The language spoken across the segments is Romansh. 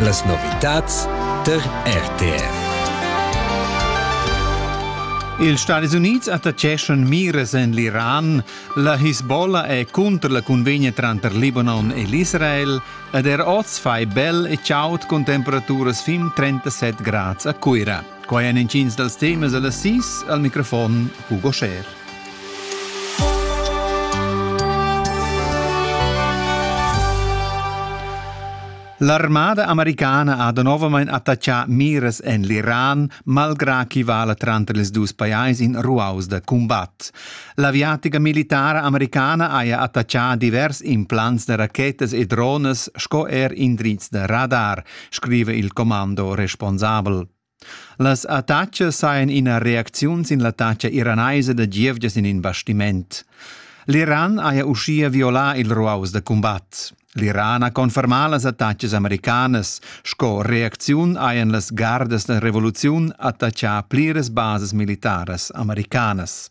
Las novitads tar RTR. Ils Stadis Unids attaccheschan miras en l'Iran. La Hisbollah è cunter la cunvegna tranter Libanon e l'Israel ed er oz fai bel e chaud cun temperaturas fin 37 grads a Cuira. Quai èn intgins dals temas da las sis al microfon Hugo Scher. L'armada americana ha novamain attaccà miras en l'Iran, malgrà ch'i vala tranter ils dus pajais in ruaus da cumbat. L'aviatica militara americana haja attaccà divers implants da rachetas e dronas sco er indrizs da radar. scriva il commando responsabel. Las attacas sajan ina reacziun sin l'attacca iranaisa da gievgias in in bastiment. L'Iran haja uschia violà il ruaus da cumbat. L'Iran ha confermà las attacas americanas. Sco reacziun hajan las gardas da revoluziun attaccà pliras bases militaras americanas.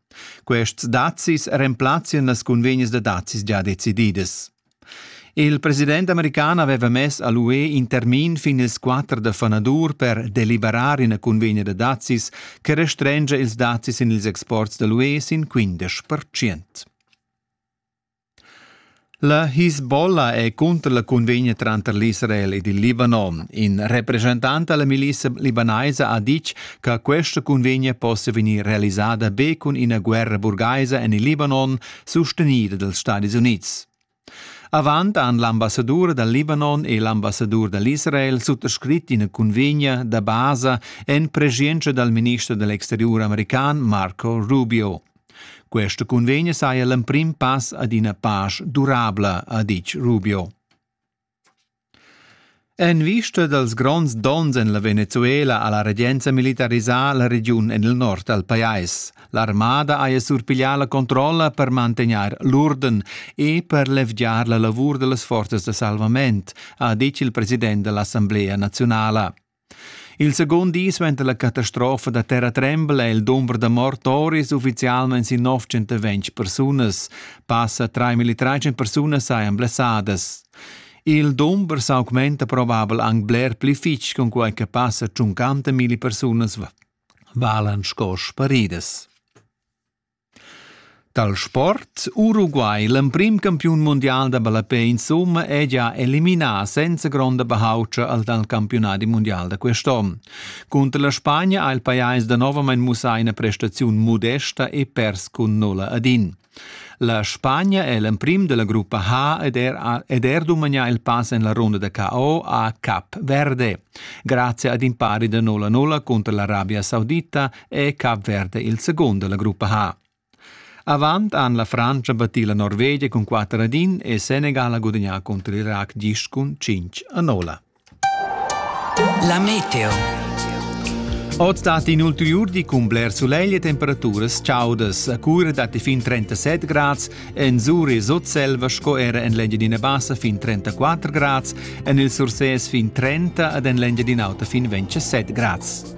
Quests dazis remplazzian las cunvegnas da dazis gia decididas. Il president american aveva mess a l'UE in termin fin ils 4 da fanadur per deliberar ina cunvegna da dazis che restrengia ils dazis sin ils exports da l'UE sin 15%. La Hisbollah è cunter la cunvegna tranter l'Israel ed il Libanon. In represchentant della milizia libanaisa ha ditg che questa cunvegna possa vegnir realisada be cun ina guerra burgaisa en il Libanon, sostenida dals Stati Unids. Avant han l'ambassadur dal Libanon e l'ambassadur dall'Israel suttascrit ina cunvegna da basa en preschientscha dal minister dell'exteriur american Marco Rubio. Questa cunvegna saja l'emprim pass ad ina pasch durabla, ha ditg Rubio. En vista dals gronds donns en la Venezuela ha la regenza militarisà la regiun en il nord dal pajais. L'armada haja surpiglià la controlla per mantegnair l'urden e per levgiar la lavur da las forzas da salvament, ha ditg il president da l'Assamblea naziunala. Il secund di suenter la catastrofa da terratrembel è il dumber da mort oris uffizialmain sin 920 persunas. Passa 3.300 persunas sajan blessadas. Il dumber s'augmenta probabel anc bler pli fitg cunquai che passa 50.000 persunas valan sco sparidas. Dal sport Uruguay l'emprim campiun mundial da ballapè insumma è gia eliminà senza gronda bahaultscha al dal campiunadi mundial da quest'onn. Cunter la Spagna ha il pajais danovamain mussà ina prestaziun modesta e pers cun nulla ad in. La Spagna è l'emprim della gruppa H ed er, ed er dumagnà il pass en la runda da KO a Cap Verde. Grazie ad impari da 0-0 contro l'Arabia Saudita e Cap Verde il secund dalla gruppa ha. Avant han la Frantscha battì la Norvegia cun 4 ad 1 e Senegal ha gudagnà contro l'Iraq gist cun 5 a 0. La meteo. Oz dat in ulteriur di cun bler sulegl e temperaturas chaudas. A cura datti fin 37 grads, en Zuri sutselva sco era en l'Engiadina Bassa fin 34 grads, en il Sursès fin 30 ed en l'Engiadina Auta fin 27 grads.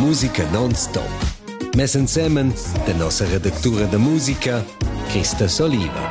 Musica non-stop. Mess ensemen de nossa redactura de musica, Christa Soliva.